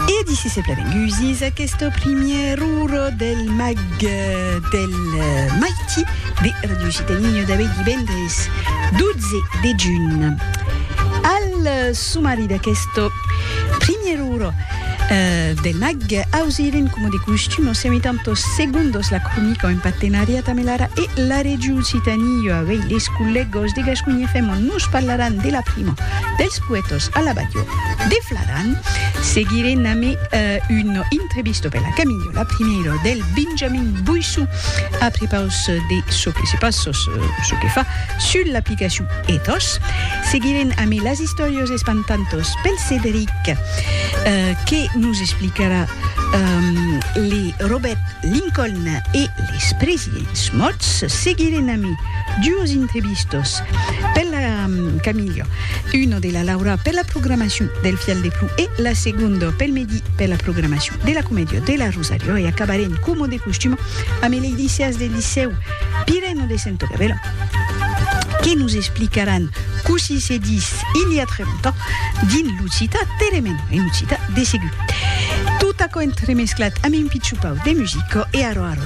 E d'ici se plevèn gusís aqueste primièr ora del mag del maiti de Radio Citat Niño d'avui divendres 12 de junh. Al somari d'aqueste primièr ora del mag ausirem coma de costum en semitantos segundos la cronica en partenariat amb l'ara e la Region Citat Niño. Avui les collègas de Gasconha FM nos parlaràn de la prima Dels poètos a la balhò de Fladan, seguire name un intrevisto per la Caminhola primièro del Benjamin Boissou a prepaus de çò que se pas ços çò que fa sul l'aplicacion Ethos. Seguirem ame las istòrios espantantos pel Cedric que nos explicarà le Robet Lincoln e les presidents mòrts. Seguirem ame duos intrevistos Per la Camillo, uno de la Laura per la programacion del Fial de Plou e la segondo pel Medi per la programacion de la Comedia de la Rosario e acabarem coma de costum amb el Eidicias del Licèu Pireno de Sento Gavelo que nos explicaràn cossí se dis il i a tre longtemps dins l'occitan teremèn en occitan de segur tot aquò entremesclat amb un pitjopau de musica e arò arò